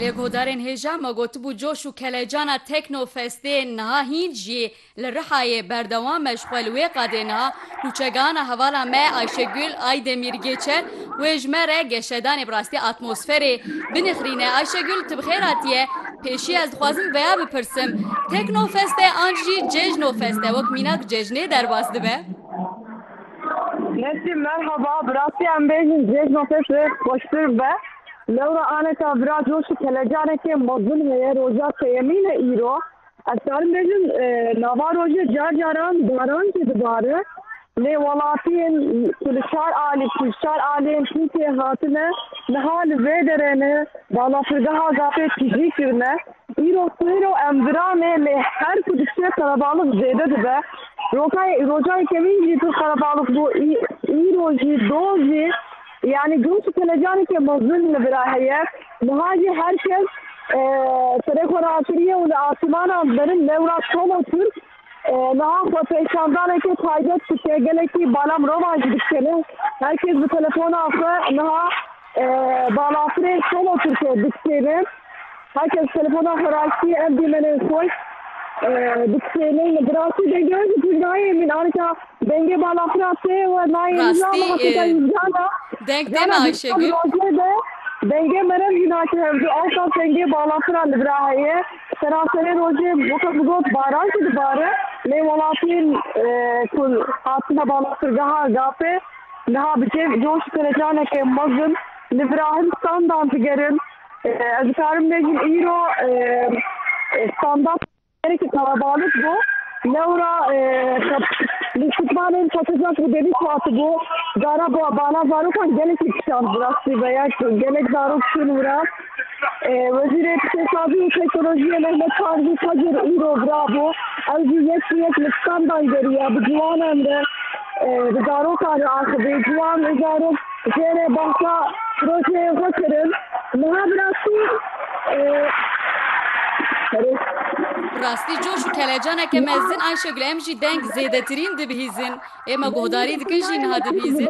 Herî guhdarên hêja me gotibû coş û kelecana Tekno Festê niha hîn jî li Rihayê berdewam e ji xwe li wê qadê niha nûçegihana hevala me Ayşegul Aydemîr Gêçer wê ji me re geşedanê bi rastî atmosferê binixrîne Ayşegul tu bi xêr hatiye pêşî ez dixwazim veya bipirsim Tekno Fest e an jî cejno fest e wek mînak cejnê derbas dibe? Nesî merhaba, bi rastî em bêjin cejna te pê xweştir be. Lewra aneta vira coşî kelecanekê mezin heye roja sêyemîn e îro. Ez karim bêjim e, nava rojê car caran baran jî dibare. Lê welatiyên ku li çar alî ku ji çar aliyên Tirkiyeyê hatine niha li vê derê ne balafirgeha Gafê tijî kirine. Îro xwêro em viran e lê her ku dikşê qelebalix zêde dibe. Rokayê rojayê kevîn jî pir qelebalix bû. Îro jî doz jî yanî girûs û kelecanekî mezin li vir a heye. Niha jî her kes serê xwe rakiriye û li asîmanan berin lewra çol û tirk Niha xwepêşandaneke taybet dike, gelekî bala mirovan jî dikşêne. Her kes bi telefona xwe niha balafirên solo tirke dikşêne. Her kes telefona xwe rastî ev dîmenên xweş dikşêne. Bi rastî dengê jî pir nayê min. Anika dengê balafira tê we nayê min la niha tê dayî Jana. Jana dîsa bi rojê de dengê meriv jî nake hev ji ew qas dengê balafira li vir a heye. Seranserê rojê weke ku got baran jî dibare lê welatiyên ku hatine balafirgeha GAP'ê niha bi cêv coş û telecanekê mezin li vira hin standan digerin. Ez dikarim bêjim îro standan gerekî kalabalig bû. Lewra li şûtmanên patizan ku devît hatibû cara bala zarokan gelekî kişand bi rastî ve ya gelek zarok çûn wira. Wezîrê Îqtîsadî û Teknolojiyê Mehmet Tarzî Kadir îro birabû. Ew jî yek bi yek li standan geriya bi ciwanan re bi zarokan re axivî. Ciwan û zarok jêrê behsa projeyên xwe kirin. Niha bi rastî Rastî coş û kelecaneke mezin Ayşegul em jî deng zêdetirîn dibihîzin. Êma guhdarî dikin jî niha dibîzin.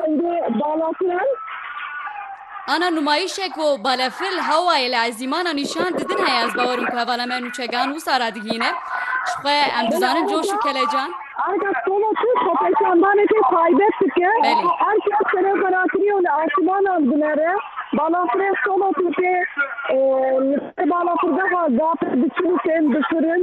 Ana numayîşe ku balefil hawayê li ezîmana nîşan didin heye ez bawer im ku hevala me nûçegan wisa re digihîne. Ji xwe em dizanin coş û kelecan. Erka stova ku xwepêşandanekê taybet dike ku erka serokwelatî û li esîmanan dinere. Balafirê stova ku tê li ser balafirgeha Gapê diçin û tên bifirin.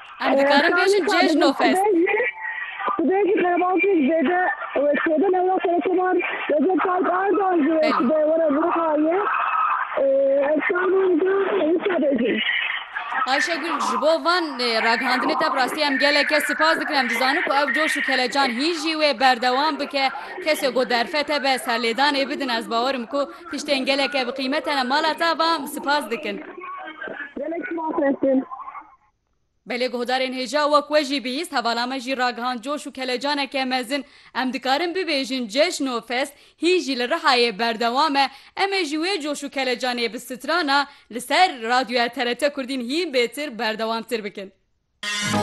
Em dikarin bêjin Cejnofest. Tu bê jî qerebankên zêde wê çêbin ew ya Serokomar Recep Tayyip Erdogan jî wê tu bê were Rûhayê. Ev şanên din wisa bêjin. Ayşegul ji bo van ragihandinê te bi rastî em geleke sipas dikin. Em dizanin ku ev coş û kelecan hî jî wê berdewam bike. Kesê ku derfet hebe serlêdanê bidin ez bawer im ku tiştên geleke bi qîmete ne. Mala te va sipas dikin. Gelek sipas Efrîn. Belê guhdarên hêja wek we jî bihîst hevala me jî ragihand coş û kelecaneke mezin. Em dikarin bibêjin ceşn û fest hîn jî li Rihayê berdewam e. Em ê jî wê coş û kelecanê bi strana li ser Radyoya TRT Kurdîn hîn bêtir berdewamtir bikin.